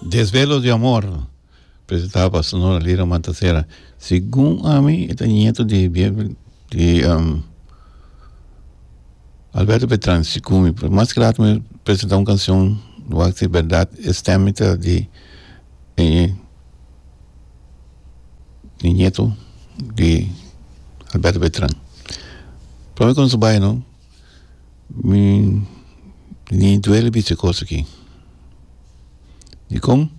Desvelo di amor presentá pa Sonora Lira Mantasera. Segun ami e ta nieto di di um, Alberto Beltrán Sicumi, pero mas ke laat mi presentá un canción wak si berdad e stem mi ta di e di nieto di Alberto Beltrán. Prome kos mi bai no. Mi ni duele bichi e kos aki. Dikon?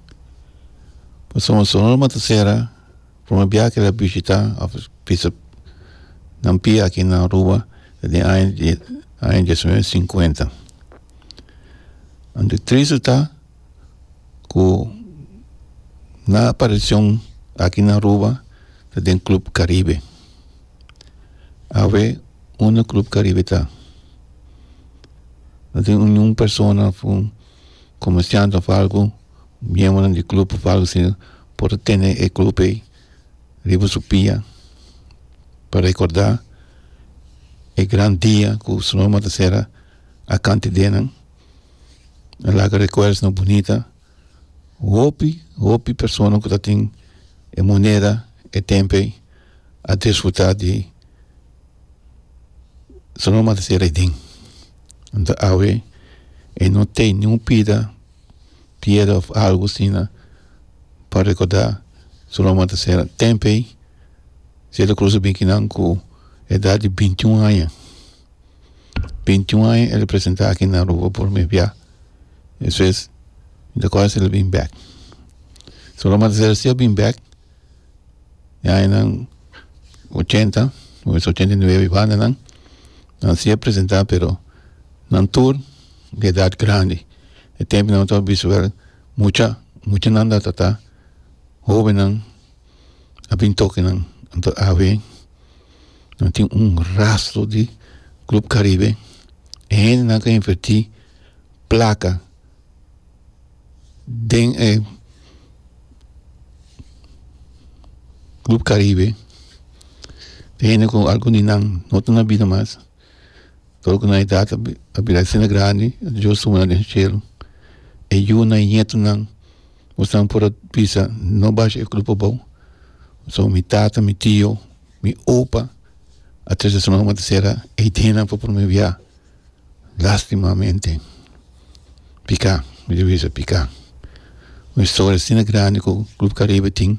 Pasobra mi so lo mata sera, prome bia ke lo a bishita òf bisa nan pia aki na aruba ta den aña di aña diecinueve sinkuenta. Anto tristenan ta ku nan aparishon aki na aruba ta den club caribe. Awe unda club caribe ta no tin ningún persona of un comerciante of algo miemronan di club of algo asina por ta tene e club ei riba su pia pa recorda e gran dia ku su nomber ta cera akantedenan a laga recuerdonan bunita. Hopi, hopi persona ku ta tin e moneda, e tempu ei, a disfrutá di su no manda sera aden. Anto awe e no tei ni un pida, piedra òf algu asina pa rekordá su no manda sera. Tempu ei si e ta krusa binki nan ku edat di binti un aña. Binti un aña e representá aki na Aruba por primer bia. eso es mi ta kos asina lo bin bek so lo manda ser asina bin bek mi añanan ochenta o es ochenta y nueve bandanan nan sigue presenta pero nan tur di edad grandi e tempo nan ta bisto wel mucha muchanan ta ta hobennan a bin tokinan a ween. no tin un rastro di club caribe e hendenan ke inverti plaka den e club caribe e hende ku al kuninan no ta na bida mas tor ku nan edad a bira asina grandi dios a wuna den shelo e yu nan e nieto nan Mostanan por a bisa, No basha e grupo abou. So mi tata, mi tio, mi opa a tres di semana bo ta sera ei dinan pa prome biaha. Lastimamente pika, mi ta bisa pika. Un historia asina grandi ku Club Caribe tin.